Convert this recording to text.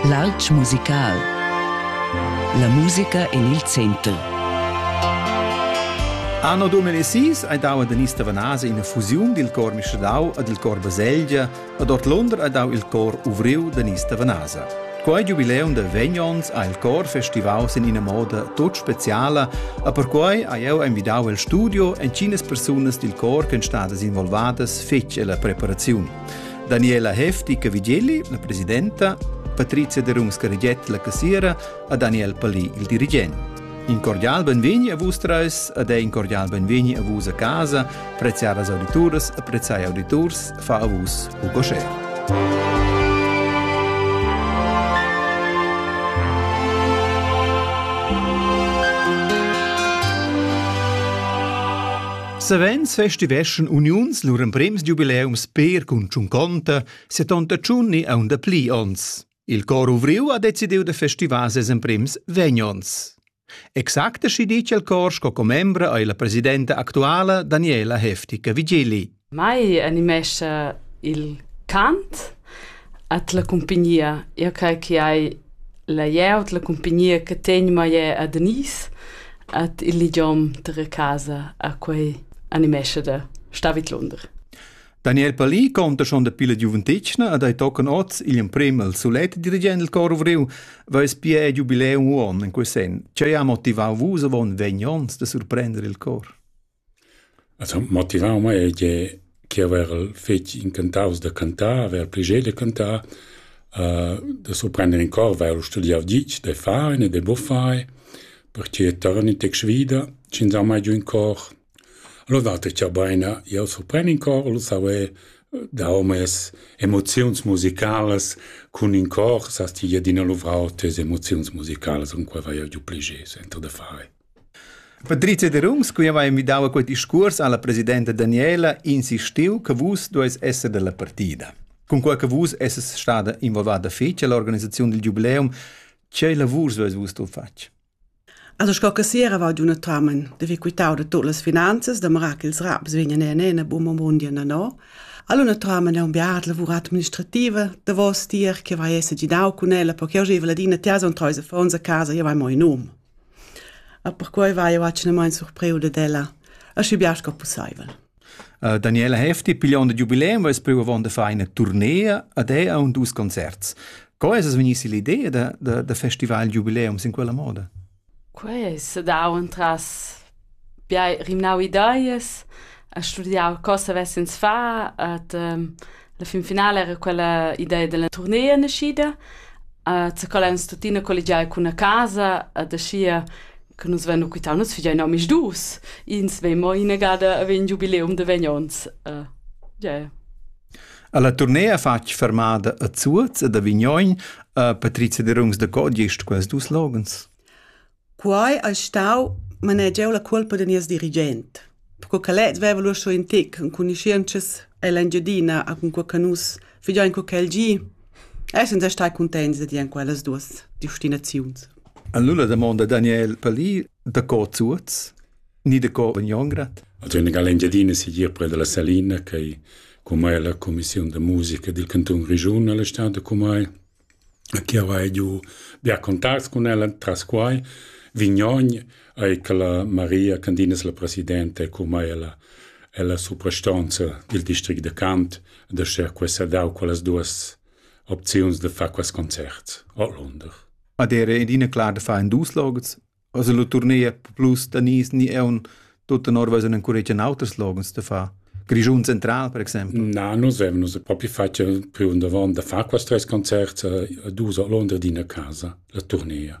L'alp musical. La musica en il center. Anno 2006 è dau ad Anista Vanase ina fusiun dil cor Mischadau e dil cor Baselgia ed ord Londra è dau il cor Uvriu d'Anista Vanase. Quei giubileum da vegnons ha il cor festivau sin ina moda tut speciala e perquei ha jeu envidau el studio en cinas persunas dil cor ch'en stadas involvadas fetg ella preparaziun. Daniela Hefti-Cavigelli, la presidenta, Patrizia Derungs-Carriget, la cassiera, a Daniel Palì, il dirigent. In cordial benvegni a vus treis ed ein cordial benvegni a vus a casa, preziadas audituras e preziai auditurs fa a vus u cocher. Savens festiveschan uniuns lur emprems giubileums per cun tschunconta 78 e aunda pli onns. Il cor Uvriu ha decidiu da festivar ses emprems vegn onns. Exacta schi dice il cor sco commembra ei la presidenta actuala Daniela Heftica-Vigili. Mai animescha il cant at la cumpagnia. Io crei che hai La glieud, la cumpagnia che tegn mei è a Danis ed il ligiom dalla casa a quei animescha da star vidlunder. Daniel Palì conta schon dapi la giuventetgna ed ei tocan oz igl emprem al sulet dirigent il cor ovriu, veis pia il giubileum uon in quei sen. Tgei ha motivau vus avon vegn onns da surprender il cor? As han motivau mei tgei che haverel fetg incantaus da cantar, haver pli gei da cantar, da surprender in cor, vair studiau ditg, da far e da buffar, perche torn in tec svida sch'insomma hai giu in cor. Allura dater cha beina jeu surpren in cor, lu saver dar mes emoziuns musicalas cun in cor, sast ti, ed ina luvr'autras emoziuns musicalas, cunquai vai jeu giu pli gei suenter da far. Patricia Derungs, qui aveva invitau a quei discuors alla presidenta Daniela, insistiu che vus dueis esser dalla partida. Cunquei che vus esses stada involvada fetg all'organisaziun del jubileum, che lavurs dueis vus tu fatg? Also sco che si era va giunatamen de quitau de tutte las finanzas da marar che ils raps vegnan en ena buma mondia na no. All'unatamen è un beat lavur administrativa da vos tier che vai esse ginau cun ella perché oggi ladina tesa un treise fons a casa e vai mo in um. E perquei vai jeu atgnamain surpriu dad ella, aschi bia sco pusseivel. Uh, Daniela Hefti, pigliond il jubileum, va più avon da fare una tournée ad è a un dus concerts. Co è es vegnisi l'idea da, da, da festival jubileum in quella moda? Quei se dà un tras Bia hai rimnau ideas, e studiau co savess ins far ed la finfinala era quella idea dalla turnea naschida. zaccalla eins tuttina colligiai cun la casa ed aschia che nus vein lu quitau. Nus figein omisdus, ins vegn mo inagada a vegn giubileum da vegn onns. Yeah. Alla turnea fatg fermada a Zuoz ed a Vignoin ha Patrizia Derungs da co gest quels dus loghens. Quai ais stau manegiau la cuolpa da nies dirigent, perque ch'el het veva lur sco ün tic, enconuschientschas ell'Engiadina a cunquai cha nus figiain co ch'el gi, essans er stai cuntents da dir in quellas duos destinaziuns. Allura damonda Daniel Palì da co Zuoz ni da co Bagnongrad. Also in l'Engiadina sigir pre dalla Salina, che cumai la cumissiun da musica dil cantun Grischun alla stad cumai Chi avais giù bia contacts cun ella tras quai, Vignogn eir che la Maria Candina es la presidenta e cumai ella ella suprastonza dil district da Cant da schar questa dar quellas duos opziuns da far quels concerts ordlunder. Ad era adina clar da far in dus logs? Also la tournea plus da nis ni eun tut tenor was en encuregia auters logens da fa. Grischun Central, per exempel? Na, nus avem nus propi fatg priu davon da far quest tres concerts a dus a Londra d'ina casa, la tournea.